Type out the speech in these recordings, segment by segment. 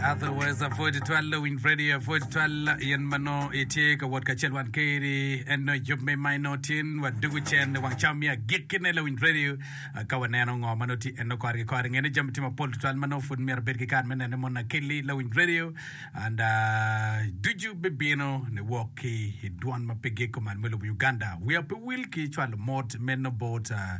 Otherwise, apwod itwal lawiny radio, apwod itwal in ma nongo itye ka wot kacel wan keri. En nongo yub me ma inongo tin wa dugu cen ni wang cam ya gikkine lawiny radio. Ah, Ka waneno ngo ma nongo ti en nongo kore ki kore. Ngene jami ti mapol tutwal ma nongo pud myero abed ki kare me nene mon akeli lawiny radio. And ah, ducu bibino ni wok ki i dwan ma pe gik kuman me lobo Uganda. Wiya pe wil ki cwalo mot me nobot ah,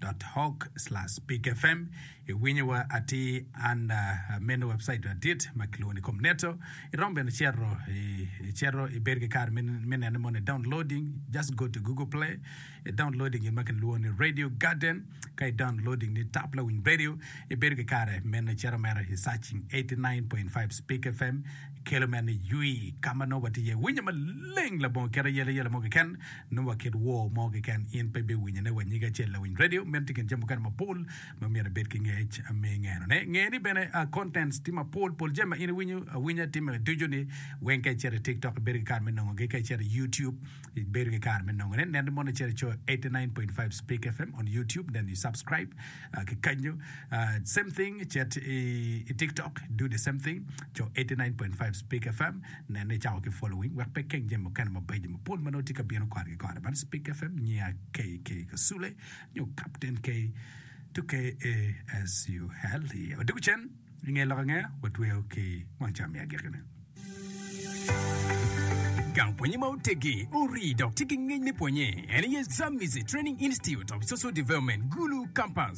dot org slash pig fm iwinyo wa atir an meno website adit ma kilwongo ni comneto irom bene cero cero ibed ki kar me nene moni downloading just go to google play i downloading in ma kilwongo ni radio garden ka i downloading ni tap la winy radio ibed ki kare meno cero mero i searching 89.5 speak fm kelo meno yui kama nongo watiye winyo maleng labongo kera yele yele mo kiken Nongo wa kit wor mo keken in pe ibiwinyo ne wa nyige acel lawiny radio. Meno tye kin jami mukene mapol ma myero ibed ki ngec me ngeno ne. Nge ni bene contents tye mapol pol jami ma in iwinyo awinya time ducu ni weng ka icito i TikTok ibedo ki kare me nongo gi ka icito i YouTube ibedo ki kare me nongo ne. Nen ni mono icito icoyo 89.5 Speak FM on YouTube then you subscribe uh, ki kanyo uh, same thing cet i, i TikTok do the same thing coyo 89.5 Speak FM Nene icako ki following wek pe ikeng jami mukene mabeco mapol ma nongo tye ka bino kore ki kore bad Spik FM, Nyiya KK Kasule nyo Kapten K to KASUL iye. Odiko cen inge lok ange watweyo ki wang cam me agikki ni. Gang pwonye ma otegi, orii dok tye ki ngec me pwonye en aye Zamizi Training Institute of Social Development, Gulu Campus.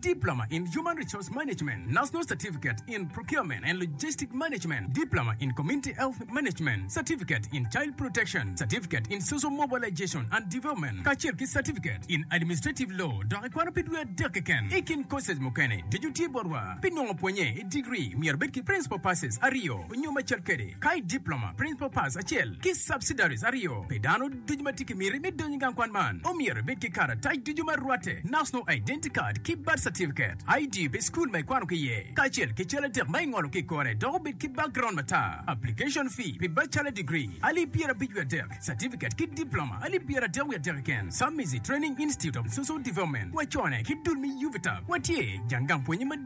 Diploma in Human Resource Management, National Certificate in Procurement and Logistic Management, Diploma in Community Health Management, Certificate in Child Protection, Certificate in Social Mobilization and Development, kacel ki Certificate in Administrative Law, dok ikwano pi dwe adek keken. I kin courses mukene, deco tye botwa. Pi nongo pwonye i degree, myero ibed ki Principal Passes aryo nyo macel kwede, ka i Diploma, Principal Pass acel, ki Subsidiaries aryo pi dano. Ducu ma tye ki miti me donyo i gang kwan man omyero ibed ki karatac ducu ma rwatte, National Identity Card ki Birth Certificate, ID pi cukul ma ikwano ki iye, kacel ki cal adek ma ingolo ki i kore dok obed ki background matar. Application fee pi Bachelor Degree, alip pyera abic wiye adek, Certificate ki Diploma, alip pyera adek wiye adek keken, Samisi Training Institute of Social Development, wacone ki dul me UVTAB, watye jang gang pwonye madit.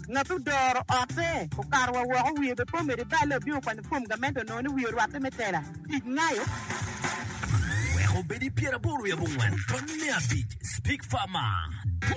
Ngat odoro otte, okato wa woko, wiye bene pe omedo i balle, obino kwanyo fom gamente onongo ni wiye orwatte me tela. Tic ngayo. Wek obed i pyeraboro i abongwen, tony me abic, Speak Farmer.